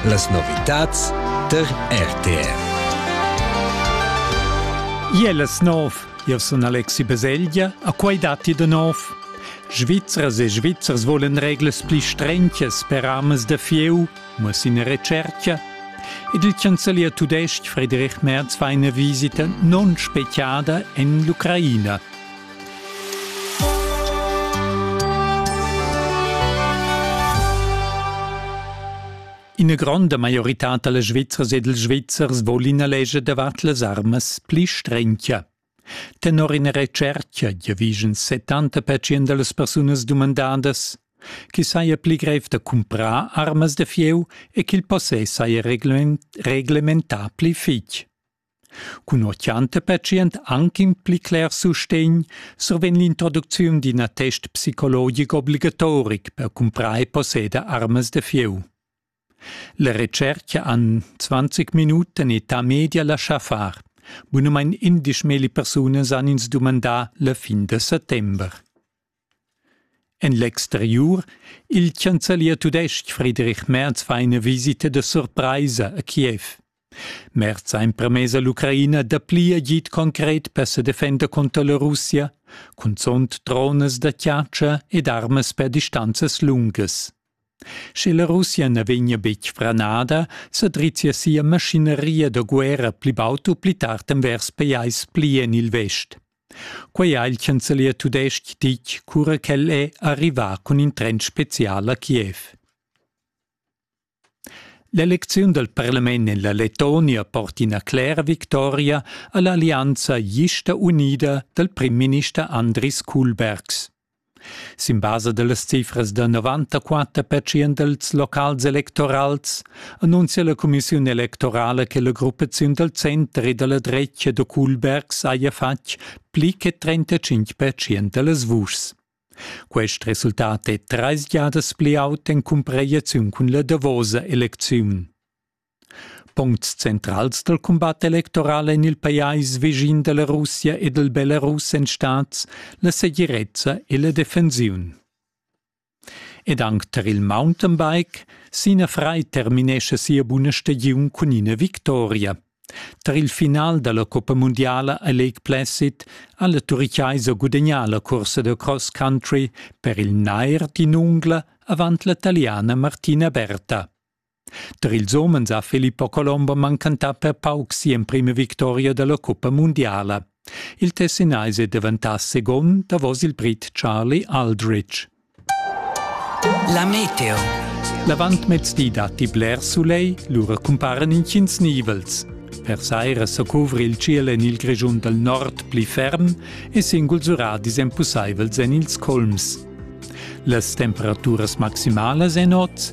Las novitads tar RTR. Ielas nov, io sun Alexi Baselgia, a quai datti da nov. Svizras e Svizzers volen reglas pli strenches per amas da fieu, muss in recerca. Ed il chancelier tudestg Friedrich Merz fa una visita non speciada en l'Ucraina. Ina gronda maioritad dalla Svizzers ed ils Svizzers vol ina legia davart las armas pli strengia. Tenor ina retscherca giavischan 70% dallas persunas dumandadas che saja pli grev da cumprar armas da fieu e ch'il possess saja reglementà pli fitg. Cun ho chianta patient anc in pli cler sustegn survegn l'introducziun d'in attest psicologic obligatoric per cumprar e posseder armas da fieu. La retscherca han 20 minuten età media laschà far. Bunamain 11 millipersunas han ins dumandà la fin da settember. En l'exteriur Il chancelier tudestg Friedrich Merz fa ina visita da surpraisa a Kiev. Merz ha empermess all'Ucraina dapli agid concret per sa defender contro la Russia, cunzunt dronas da chatscha ed armas per distanzas lungas. Sche la Russia na vegnia betg franada, sa drizzia sia maschineria da guerra pli baud u pli tard envers pajais pli en il vest. Quei ha il chancelier tudestg ditg cura ch'el è arrivà cun in tren spezial a Kiev. L'elecziun dal parlament en la Letonia porta ina clera victoria a l'allianza gista unida dal primminister Andris Kulbergs. Sin basa dallas cifras da novantaquater pertschient els locals electorals annunzia la cumissiun electorala che la gruppaziun dal center e dalla dretga da Kulbergs haja fatg pli che trentacinc pertschient dallas vuschs. Quest resultat è treis giadas pli aut en cumparaziun cun la davosa elecziun. Puncts centrals dal cumbat electoral en il pajais vischin da la Russia e dal Belarus èn stads la segirezza e la defensiun. Ed anc tar il mountainbike, Sina Frei terminescha sia buna stagiun cun ina victoria. Tar il final da la Coppa mundiala a Lake Placid ha la Turichaisa gudagnà la cursa da cross country per il nair d'in ungla avant la taliana Martina Berta. Der ils homens ha Filippo Colombo mancantà per pauc si'emprima victoria dalla cuppa mundiala. Il Tessinaise è diventà second davos il Brit Charlie Aldrich. La meteo. L'avantmezdi datti bler soleil, lura cumparan intgins nivels. Per saira sa cuvri il ciel en il Grischun dal nord pli ferm e singuls uradis èn pussaivels en ils colms. Las temperaturas maximalas èn oz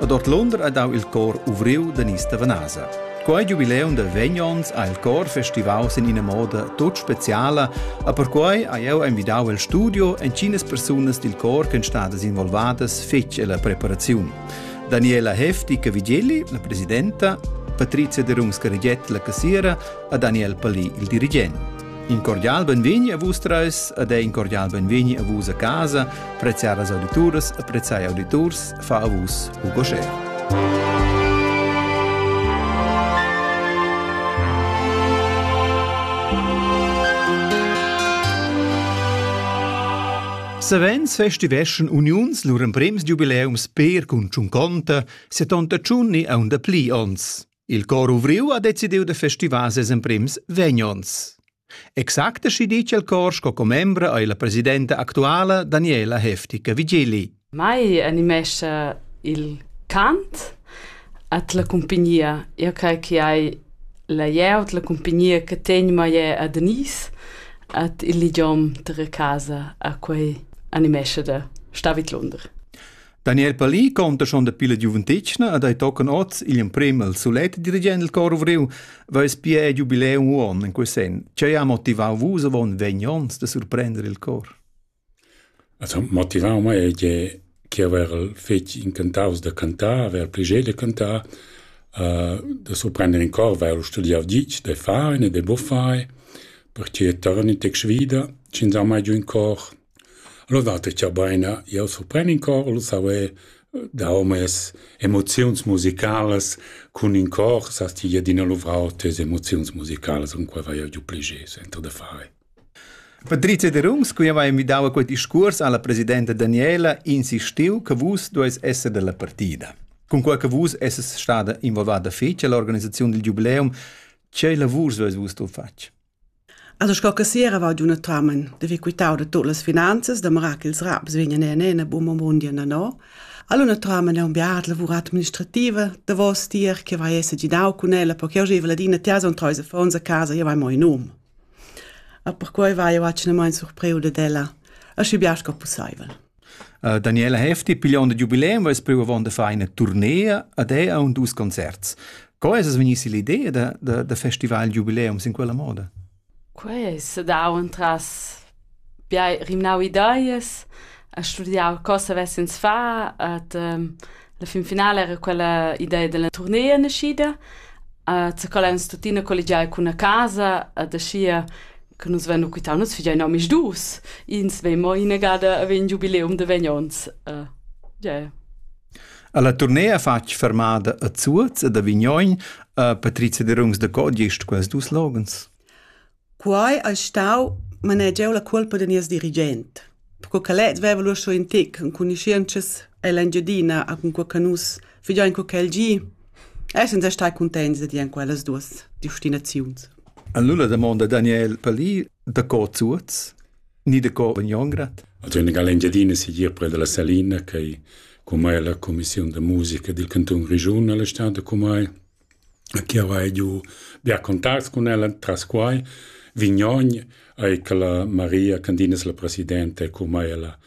Ad Ortlonder ha dau il cor ovriu da Nista Vanasa. Quei giubileum da vegn onns ha il cor festivau sin ina moda tut speciala, a perquei ha jeu envidau el studio entginas persunas dil cor ch'en stadas involvadas fetg ella preparaziun. Daniela Hefti Vigilli, la presidenta, Patrizia de Rungs-Carigiet, la cassiera, a Daniel Palì, il dirigent. In cordial benvegni a vus treis ed in cordial benvegni a vus a casa, preziadas audituras e preziai auditurs, fa a vus ugoschè. Savens festiveschan uniuns lur emprems jubileums per cun tschunconta 71 e aunda pli ons. Il cor uvriu ha decidiu da festivar ses emprems vegnons. Exact aschi ditg el cor sco commembra ei la presidenta actuala Daniela Heftica-Vigeli. Mai animescha il cant at la compagnia. Io crei che hai la ieu la compagnia che tegn mai a Denise at il idiom della casa a quei animescha da Stavit Lunder. Daniel Palì conta schon da pilla giuventetgna ad ei tocan oz igl emprem al sulet dirigent il cor ovriu, veis pia giubileum uon in quei sen. Che ha motivau vus avon vegn ons da surprender il cor? Also motivau mei è che che aver fetg incantaus da cantar, aver pligé de cantar, uh, da surprender in cor, weil studiau ditg, de fare, de buffare, perché torni tec svida, sin mai giù in cor, Alura datti chabaina, jau surpren in cor, lu savair da homens, emoziuns musicalas cun in cor sas ti ir adina luvrau tes emoziuns musicalas, cunquai vai jeu giu pli gest enta da far. Patrizia Derungs, qui aveva invitau a quel discurs alla presidenta Daniela, insistiu che vus dueis esser dalla partida. Cunquai che vus esses stada involvada fetg alla organisazione del giubileum, che lavurs dueis vus tu fatg? Alura sco che sera va adunatamain d'avair quitau da tut las finanzas, damera ch'ils raps vegnan enina buca mo bundi ennà. Adunatamain è un biart lavur administrativa davos tier che vai esser gidau cun ella, perché jau gieva ladina tias on treis affons a casa, jau hai mo in um. E perquai vai jau atgnamain surpriu dad ella, aschi bia sco pussaivel. Daniela Hefti pigliond il jubileum vess priu avon da far ina turnea ad ei aunc dus concerts. Co es es vegnissi l'idea da, da, da festival jubileum sin quella moda? Quei è sedau entras bia rimnau ideias, a studiar co savessens far, at um, La fin finala era quella idea della turnea naschida. Uh, za quella ens tuttina collegiai cun a casa ad aschia che nus vennu quitau nus figein omis dus. Ins vei mo inegada a vegn jubileum de vegnons. Uh, yeah. Alla turnea fatg fermada a Zuoz ed a Vignoin a Patrizia de Rungs de Codiest quels dus logens. Quai ais stau manegiau la cuolpa da nies dirigent, perco ch'el het veva lur sco ün tic, cunuschientschas en l'Engiadina e cunquei che nus figein co ch'el gi, essan stai cuntents da dir en quellas duos destinaziuns. En lura damonda Daniel Palì da co Zuoz ni da co Vagnongrad. Also in l'Engiadina sigir pre dalla Salina, che cumai la commissiun da musica dil canton Grischun alla stad cumai Chi avais giù bia contacts cun ella tras quai. Vignogn eir che la Maria Candina es la presidenta e cumai ella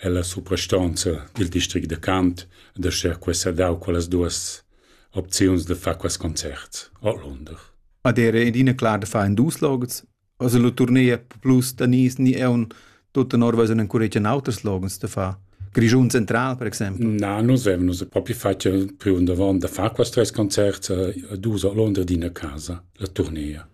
ella suprastonza dil district da Cant da cher questa dau quellas duos opziuns da far quests concerts ordlunder. Ad era adina clar da far in dus logs. Also la tournea plus da nis ni eun tut tenor was un encuregia auters logens da fa. Grischun Central, per exempel? Na, nus avem nus propi fatg priu davon da far quas tres concerts a dus a Londra d'ina casa, la tournea.